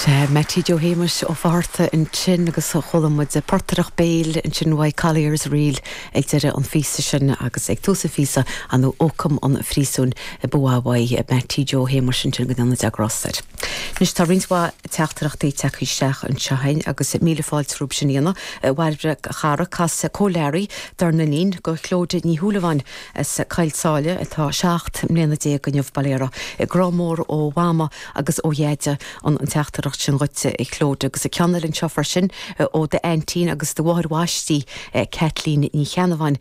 Sea, Meaití Joe Shéamais Ó Fátharta ansin agus chuala muid portaireacht béil ansin uaidh, Collier's Reel ag deireadh an phíosa sin agus ag tús an phíosa, an Ócam an Phríosúin ba mhaith uaidh é, Meaití Joe Shéamais ansin go ndéana Dia grásta air. Anois tá roinnt mhaith teachtaireachtaí tagtha isteach anseo againn agus míle fáilte romhaibh sin a dhéanamh. A Bhairbre, a chara, casadh Cóil Learaí dár n-iníon, go Chlóide Ní Shúilleabháin, as Coill tSáile atá seacht mbliana déag inniu, bail ó Dhia uirthi. Grá mór ó Mhama agus ó Dheaide an teachtaireacht sin dhuit, a Chlóide, agus ceann eile anseo freisin ó d'aintín agus do mháthair bhaistí, Caitlín Ní Cheannabháin.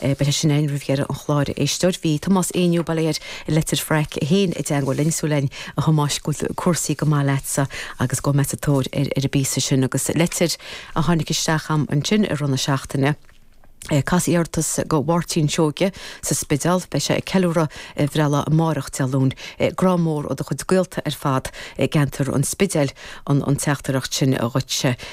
Beidh sé sin againn roimh dheireadh an chláir, a Éisteoir. Bhí Tomás Éinniú, bail ó Dhia air, i Leitir Fraic féin i dteangmháil linn. Súil againn, a Thomáis, go bhfuil cúrsaí go maith leatsa agus gabhfaidh mé sa tóir ar an bpíosa sin agus litir a tháinig isteach a'm ansin i rith na seachtaine. Cas iarratas go Mháirtín Seoige sa Spideál. Beidh sé ag ceiliúradh a bhreithlá amárach, Dé Luain. Grá mór ó do chuid gaolta ar fad i gceantar an Spidéil an teachtaireacht sin dhuitse.